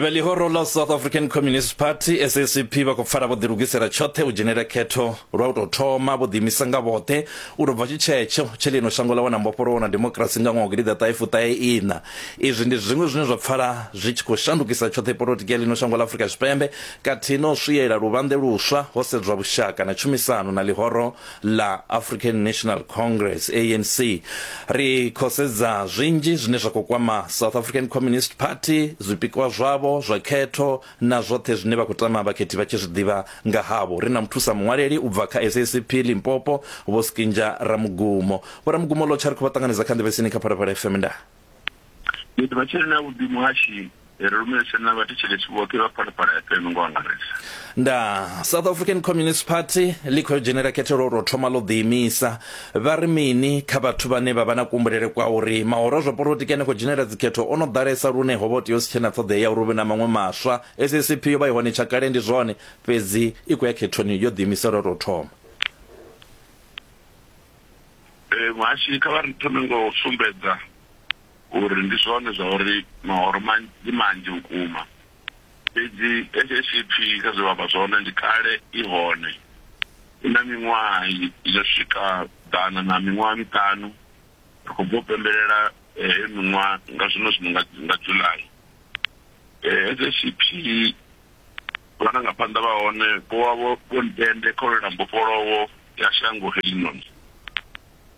vha ḽihoro ḽa south african communist party sacp vha khou pfala vho ḓilugisela tshoṱhe u dzhenela khetho lwa u tou thoma vho ḓiimisa nga vhoṱhe u tou bva tshitshetsho tshe ḽino shango ḽa wana mbofholowo na demokirasi nga ṅwaha wa gidiḓaṱahefuṱaheina izwi ndi zwiṅwe zwine zwa pfala zwi tshi khou shandukisa tshoṱhe polotiki ya ḽino shango ḽa afurika tshipembe khathihi na u swiela luvhanḓe luswa ho sedzwa vhushaka na tshumisano na ḽihoro ḽa African National Congress ANC ri khosedza zwinzhi zwine zwa khou kwama South African Communist Party zwipikwa zwavho zwa khetho na zwoṱhe zwine vha khou tama vhakhethi vha tshi zwi ḓivha nga havho ri na muthusa muṅwaleli u bva kha SACP Limpopo Vho Skinja Ramugumo Vho Ramugumo Lotsha ri khou vha ṱanganedza kha nḓevhesini kha Phalaphala FM nda Ndi ḓivha tshiri na vhuḓimu ha tshi ri lumelise na vhathetshelesi vhoṱhe vha phalaphala ya fm ngo angarisa nda south african communist party ḽi khou dzhenela khethelo ro thoma ḽo ḓiimisa vha ri mini kha vhathu vhane vha vha na kumbulele kwa uri mahoro zwa polotiki ane khou dzhenela dzikhetho o no ḓalesa lune ho vha tea u si tshena ṱhoḓea ya uri hu vhe na maṅwe maswa sacp yo vha i hone tsha kale ndi zwone fhedzi i khou ya khethoni yo ḓiimisela ro thoma Muhashi kha vha ri thome ngo u sumbedza uri ndi zwone zwa uri mahoro ndi manzhi vhukuma. Fhedzi hetsho tshipfi kha zwe vha amba zwone ndi kale i hone. I na miṅwaha yo swika ḓana na miṅwaha miṱanu. Ri khou bva u pembelela heyo miṅwaha nga zwino zwino nga nga July. Hetsho tshipfi vharangaphanḓa vha hone vho vha vho ntende kha u lwela mbofholowo ya shango heḽinoni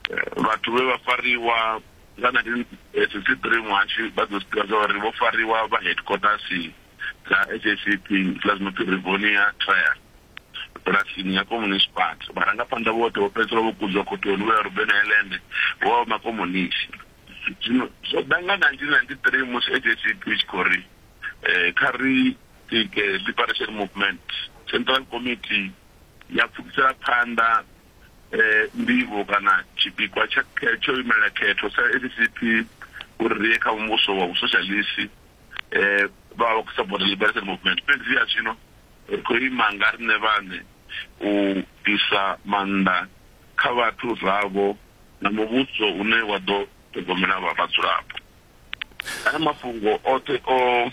eh, vhathu vhe vha fariwa nga 1963 muhashi vha ḓo zwi zwa uri vho fariwa vha headquarters dza SACP dza zwi no pfi Rivonia Trial bulasini ya communist party vharangaphanḓa vhoṱhe vho fhedzisela vho kudzwa khothoni vho ya Ruben Island vho vha makomunisi zwino zwo ḓa nga 1993 musi SACP i tshi khou ri um kha ri tike liberation movement central committee ya pfukisela phanḓa ndivho kana tshipikwa tsha tsho imelela khetho sa SACP uri ri ye kha muvhuso wa vhusoshalisi vha vha vha khou support Liberation Movement fhedzi ya zwino ri khou ima nga riṋe vhaṋe u ḓisa maanḓa kha vhathu vhavho na muvhuso une wa ḓo ṱhogomela vha vhadzulapo. Haya mafhungo oṱhe o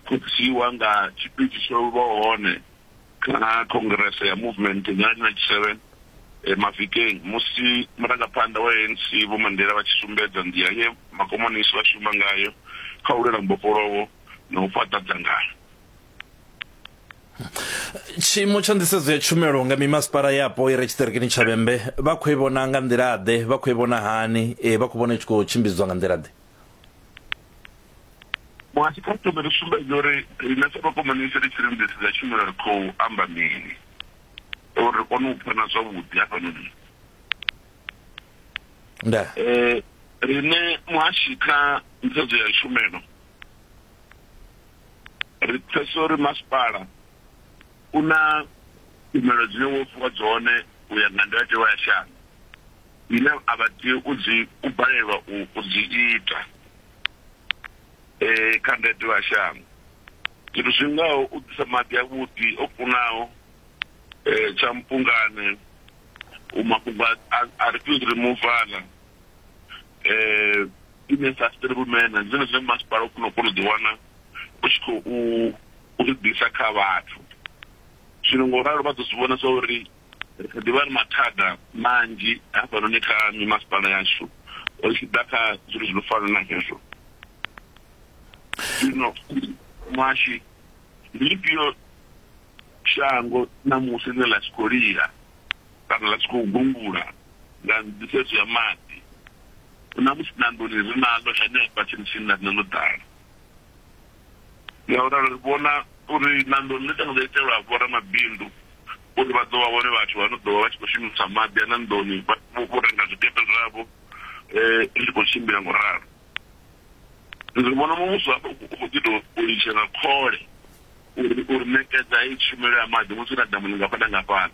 khuthiwa nga tshipidi tsho vha hone kha congress ya movement nga 97 e, mavhikeng musi murangaphanḓa wa ANC Vho Mandela vha tshi sumbedza nḓila ye makomonisi vha shuma ngayo kha u lwela mbofholowo na u fhaṱa dzangano. tshiimo tsha nḓisedzo ya tshumelo nga mimasipala yapo i re tshiṱirikini tsha vhembe vha khou i vhona nga nḓila-ḓe vha khou i vhona hani e, vha khou vhona i tshi khou tshimbidzwa nga nḓila-ḓe Muhasho kha ri thome ri sumbedze uri riṋe sa vhakomanisi ri tshi lingedza tshumelo ri khou amba mini uri ri kone u pfana zwavhuḓi hafhanoni. Nda. Eh, riṋe muhashi kha ntshedzo ya tshumelo ri pfesa uri masipala u na tshumelo dzine wo fhiwa dzone u ya nga ndayotewa ya shango. dzine a vha tea u dzi u balelwa u u dzi ita eh kha ndayotewa ya shango zwithu zwi ngaho u ḓisa maḓi avhuḓi o kunaho eh tsha mpungane u mafhungo a- a a refuse removal eh ine sustainable manner ndi zwone zwine masipala u kona u kona u ḓi wana u tshi khou u zwi ḓisa kha vhathu zwino ngo ralo vha ḓo zwi vhona zwa uri Ri kha ḓi vha na mathada manzhi hafhanoni kha mimasipala yashu ri tshi ḓa kha zwithu zwi no fana na hezwo. Zwino muhashi, ndi ḽifhio shango ṋamusi ḽine ḽa tshi khou lila kana ḽa tshi khou gungula nga nḓisedzo ya maḓi? Ṋamusi na nḓuni ri naḽo, henefha tsini tsini na riṋe ḽo ḓala. Ngauralo ri vhona uri ṋando ḽi ṱanḓa ḽo itelwa vhoramabindu uri vha ḓo vha vhone vhathu vha no ḓo vha vha tshi khou shumisa maḓi a ṋandoni vho renga zwikepe zwavho zwi tshi khou tshimbila ngo ralo. Ri vhona muvhuso hafha u khou ḓi tou ulutshela khole uri uri ṋekedza heyi tshumelo ya maḓi musi hu na damu ḽingafha na ngafhani.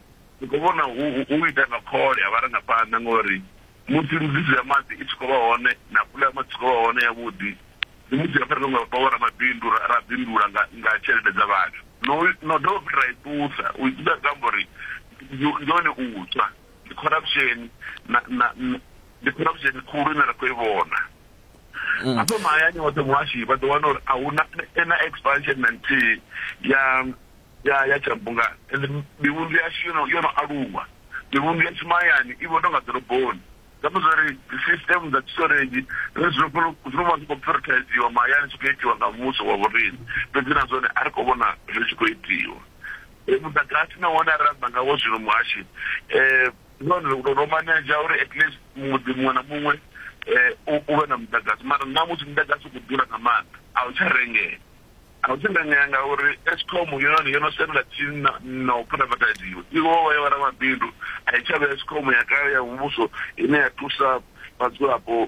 Ndi khou vhona hu u ita nga khole ha vharangaphanḓa ngauri musi mbudziso ya maḓi i tshi khou vha hone na pula ya maḓi i tshi khou vha hone yavhuḓi ndi musi ho fhira nga vho ramabindu ra ra bindula nga nga tshelede dza vhathu no no dovha futhi ra i ṱusa u i ṱusa zwi amba uri ndi ndi hone u tswa ndi corruption na na na- ndi corruption khulu ine ra khou i vhona hafha mahayani hoṱhe muhashi vha ḓo wana uri a huna na expansion na nthihi ya ya ya tshabunga ende mivhundu yashu yo no yo no aluwa mivhundu yashu mahayani i vho tonga ḓoroboni zwiamba zwa uri dzi system dza storage zwine zwi khou zwi vha zwi khou prioritiziwa mahayani zwi khou itiwa nga muvhuso wa vhorine fhedzi na zwone a ri khou vhona zwi tshi khou itiwa muḓagasi na wone a ri amba ngawo zwino muhashi um none ro maneja uri at least muḓi muṅwe na muṅwe um u vhe na muḓagasi mara nṋa musi muḓagasi u khou ḓura nga maanḓa a u tsha rengea Nga u dzinginyea ngauri Eskom yone yo no sendela tsini na na u phuraivataiziwa, i vho vha ya vhoramabindu, a i tsha vha Eskom ya kale ya muvhuso ine ya thusa vhadzulapo.